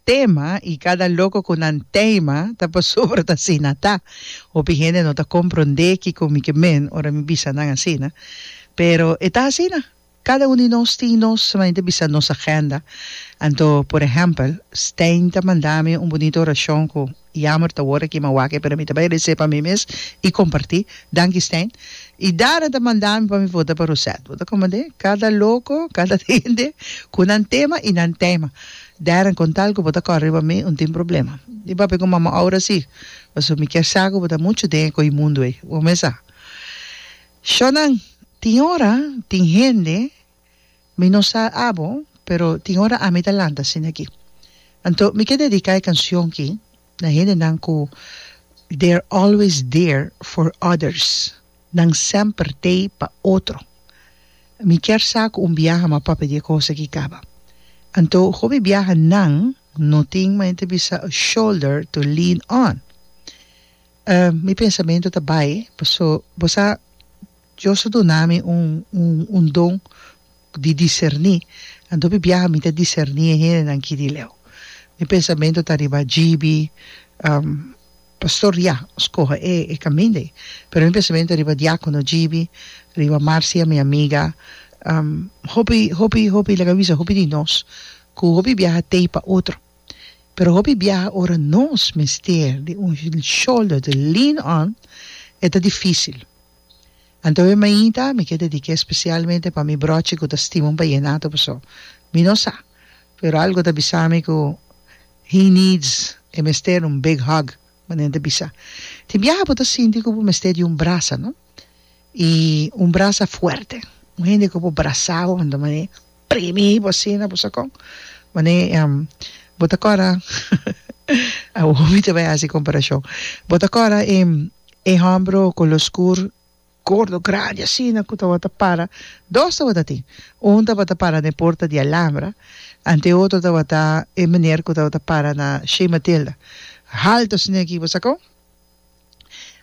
Tema y cada loco cu nan teima ta pasobra ta asina ta. Hopi hende no ta compronde kico mi ke men ora mi bisa nan asina. Pero e ta asina. Cada un di nos tin nos manera di bisa nos agenda. Anto, por ehempel, Stijn ta manda mi un bunito oracion cu. Yamer ta wor aki, ma wak e, pero mi ta bai rese pa mi mes i kompartí. Danki Stijn. I Dara ta manda mi pa mi vota pa Rosette. Bo ta komprendé? Kada loko, kada hende ku nan tema i nan taima. Darren, kon tal ku bo ta kòrè riba mi, un tin problema. Di papia ku mama oura si, pasobra mi kier sa ku bo ta muchu den e koi mundu ei. Bo mes sa. Shònan, tin ora tin hende. Mi no sa abo, pero tin ora ami ta lanta asina aki. Anto mi ke dediká e kanshon ki na hendenan ku they're always there for others, nan semper tei pa otro. Mi kier sa ku un biaha mi a papia di e kos aki kaba. Anto ku mi biaha nan no tin maña bisa a shoulder to lean on. Mi pensamentu ta bai, paso bo sa. Dios a duna mi un un un don di diserní, anto biaha mi ta diserní e hendenan ki di leu. Mi pensamentu ta riba GB, am, Pastor Ria skohe e e kaminda ei, pero mi pensamentu ta riba Diakono GB, riba Marcia mi amiga, am, hopi hopi hopi laga bisa hopi di nos ku hopi biaha tei pa otro, pero hopi biaha ora nos mester di un shoulder to lean on e ta difisil. Anto e mainta mi ke dediké spesialmente pa mi brochi ku ta stima un ballenato paso mi no sa pero algo ta bisa mi ku he needs e mester un big hug manera ta bisa tin biaha bo ta sinti ku bo mester di un brasa no i un brasa fuerte un hende ku por brasa bo manera Primi bo asina bo sa con mane bo ta cora awo mi ta bay haci comparacion bo ta cora e hombro color scur gordo grandi asina cu tabata para dos tabata tin un tabata para na e porta di alambra ante e otro tabata e meneer cu tabata para na shey matilda halto asina aki bo sa con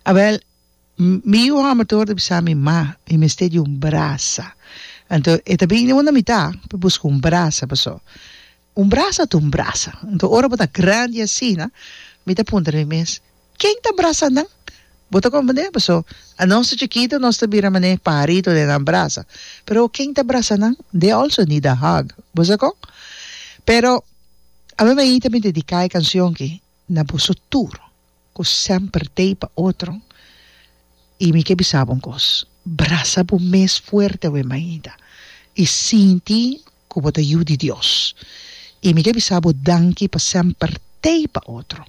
abel Mi yu hòmber ta worda bisa mi, Ma, mi mester di un brasa. Anto e ta bini unda mi ta pa buska un brasa, paso un brasa ta un brasa. Anto ora bo ta grandi asina, mi ta puntra mi mes, Ken ta brasa nan? Bo ta komprendé? Paso anos ta chikitu, nos ta bira manera e pajaritu den nan brasa. Pero ken ta brasa nan? They also need a hug. Bo sa kon? Pero, a mi mainta mi dediká e kanshon ki. Na boso tur ku semper dei pa otro, i mi ke bisa bo un kos, brasa bo mes fuerte awe mainta i sinti ku bo ta yu di Dios. I mi ke bisa bo danki pa semper dei pa otro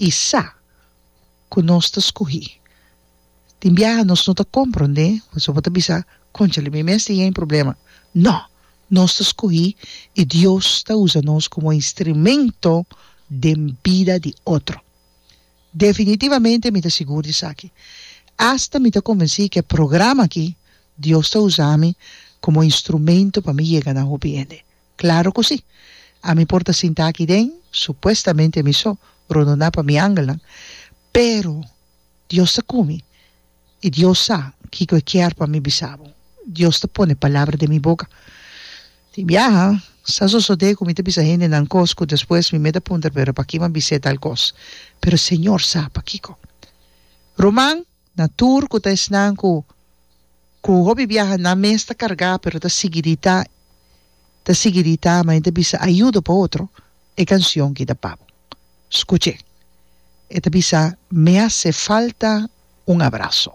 i sa ku nos ta skohi Tin biaha nos no ta komprondé pasobra bo ta bisa, Konchale, mi mes tin e problema. No! Nos ta skohí i Dios ta usa nos komo e instrumento den bida di otro. Definitivamente mi ta sigur di esaki. Asta mi ta konvensí ku e programa akí Dios ta usa ami komo e instrumento pa mi yega na hopi hende. Klaro ku sí! Ami por ta sinta akí den, supuestamente ami so, rondona pa mi angelnan, pero. Dios ta ku mi, i Dios sa kiko e kier pa mi bisa bo. Dios ta pone palabra den mi boka. Tin biaha, sa sosodé ku mi ta bisa hendenan kos ku despues mi meda puntra, Pero pakiko a bis'é tal kos? Pero Señor sa pakiko. Ruman na tur ku ta esnan ku ku hopi biaha nan mes ta kargá, pero ta sigui di ta, ta sigui di ta, main ta bisa ayudo pa otro, e kansion ki ta pa bo. Scuche. E ta bisa, Me hace falta un abrazo.